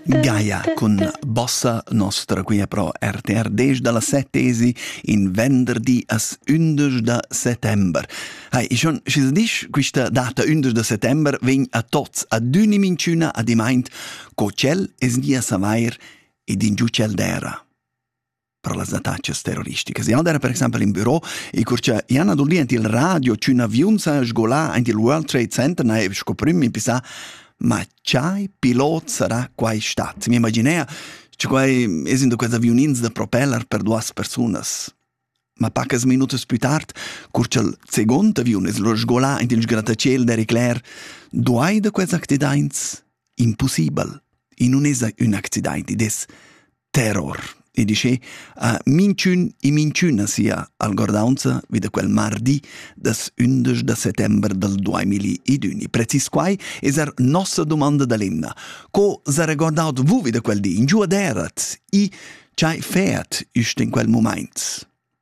Gaia cun bossa nostra qui pro RTR 10 dalla set tesi in venderdi as 11 da settember. Hai, ich schon schis disch quista data 11 da settember vegn a tots ad uni minciuna a dimaint co cel es dia savair ed in giucel dera. per las attacas terroristicas. Jan era per exempel in büro e curcia Jan Adulli ent il radio c'un aviun sa sgola ent il World Trade Center na sco prim in pisa ma chai pilot sarà quai stat. Mi imaginea che quai esendo quels aviunins da propeller per duas personas. Ma pacas minutas più tard, curcia il second aviun es lo sgola ent il sgrattacel d'Eric Clair, duai da quels accidaints? Impossibel. In non esa ün accident, id es terror. E dice, a minchün e minchüna sia algordaunza vi da quel mardi das 11 da settember del 2021. Precis quai es er nossa domanda da l'emna. Co s'ha regordaut vu vi da quel di? In giuaderet? I chai feat ist in quel moment?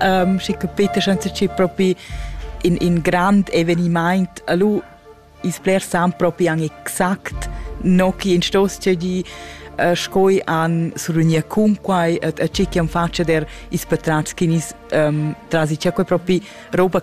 um, schi capita senza ci propi in, in grand eveniment allo is bler sam propi an exact no chi in stos di uh, scoi an surunia cunquai et a cichi an faccia der is patrats chinis um, trasi c'è quei propi roba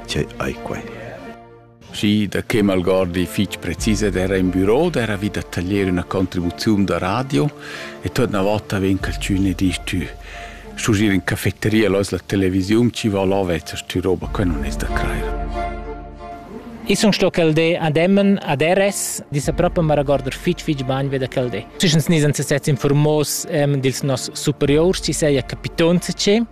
Tgei ei quei? Schi, da che malgordi fich precis ed era in büro d'era vi da taglier üna contribuziun da radio e tuot na vota vegn calchün e disch tü schugier in cafetteria lois la televisiun chi va là vezzas tü roba que non es da crair. Ich sun sto quel de ad Emmen ad RS, disa proprio ma regorder fich fich bagn ve da quel de. Schischens ni senza sez informos ähm, dils nos superiors, ci seia capitonze che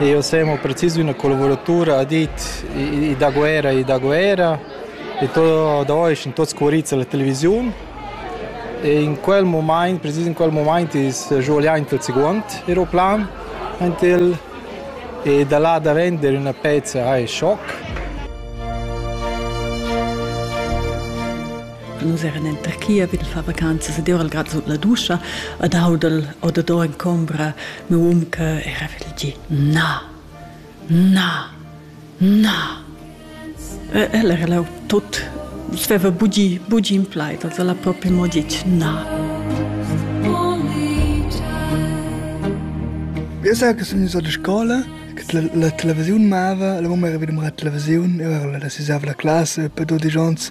Jeu sem ho precis üna collavuratura ha dit i da guerra i da guerra e tot da ois in tot scuorizza la televisiun e in quel mumaint precis in quel mumaint is svuliaint il seguond aeroplan entil e da là da vender üna pezza hai schoc Nus eran en Turchia vid far vacanzas ed ora grad sut la duscha ed audel odador en combra meu um che era vegl gi na, na, na. El era là tot, nus veva bugi, bugi in plaid, also la proprio mo ditg na. Eu sage che sun ins a la scola La televisiun mava, la mumma era vegnida a murar la televisiun, eu ero la sisava la classa per dudesch ons,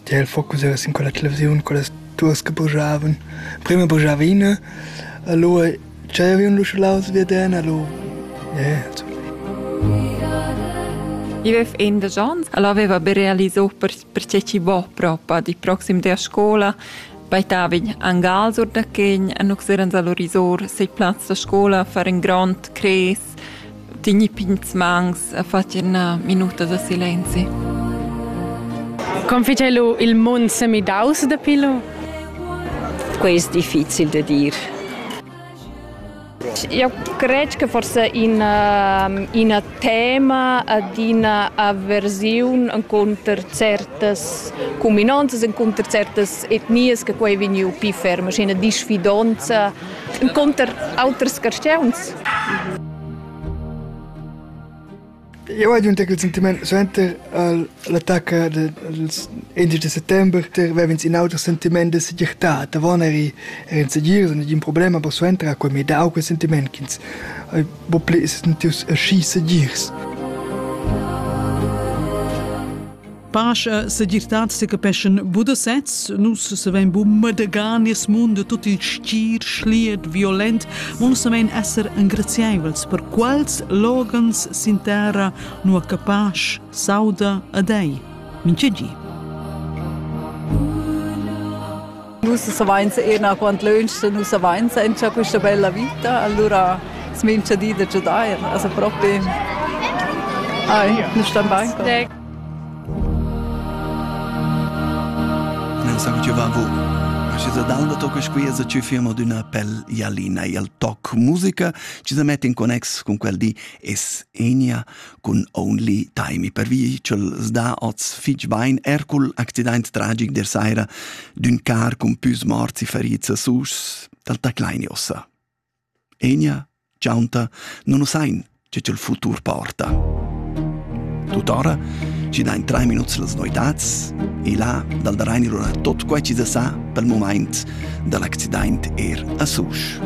tia il focus era sin quella televisiun, quellas duos che bujavan. Prima bujava ina, alò tschaiavan l'usche laus via den, alò yeah, insomma. Il vef in de Jans, el aveva be realiso per perché chi vo propa di proxim der scola baitavin angal sur da quegn a noxeran salorisor sei plaz da scola far in grond cres tigni pigns mangs a facer una minuta da silenzi. Come fice lu il mund semidaus dapi lu? Questo è difficile da dire. Jau cred che forsa ina, ina tema ad ina aversiun encunter certas cuminanzas, encunter certas etnias che quai è vegniu pli ferm, sche ina disfidonza encunter auters carstgauns. Jau hai adüna quel sentimaint suenter l'attacca dals indesch da settember vev'ins in auter sentimaint da segirtad. Avon eri era insegirs, nagin problem, aber suenter ha quei mi dau quel sentimaint ch'ins hai buca pli sentius aschi segirs. Pasch e segirtad secapeschan bu da sez. Nus savein bu madegar nies mund tut il stir, schliet, violent. Mo savein esser engraziaivels per quals loghens sin terra nua che pasch sauda a dei. Minchedi. Nus savainsa ena quant lönch nus savainsa entcha quista bella vita, allura s'mincha di da giudair, also propi. Ai, nus stan bain. Nel sa giovavo. Ma se dal toc qui es ci firma d'una pel ialina il toc musica ci se mette in connex con quel di es Enia cun only time pervi ch'el sda oz fitg bain er cul accident tragic der saira d'ün car cun püs morts e ferits a Sus dal taclaini ossa. Enia, ciaunta, non usain che il futur porta. Tuttora ci dain tre minuts las noitats e là dal da Reinirona tot quai ci da sa pel moment dall'accident er a Sus.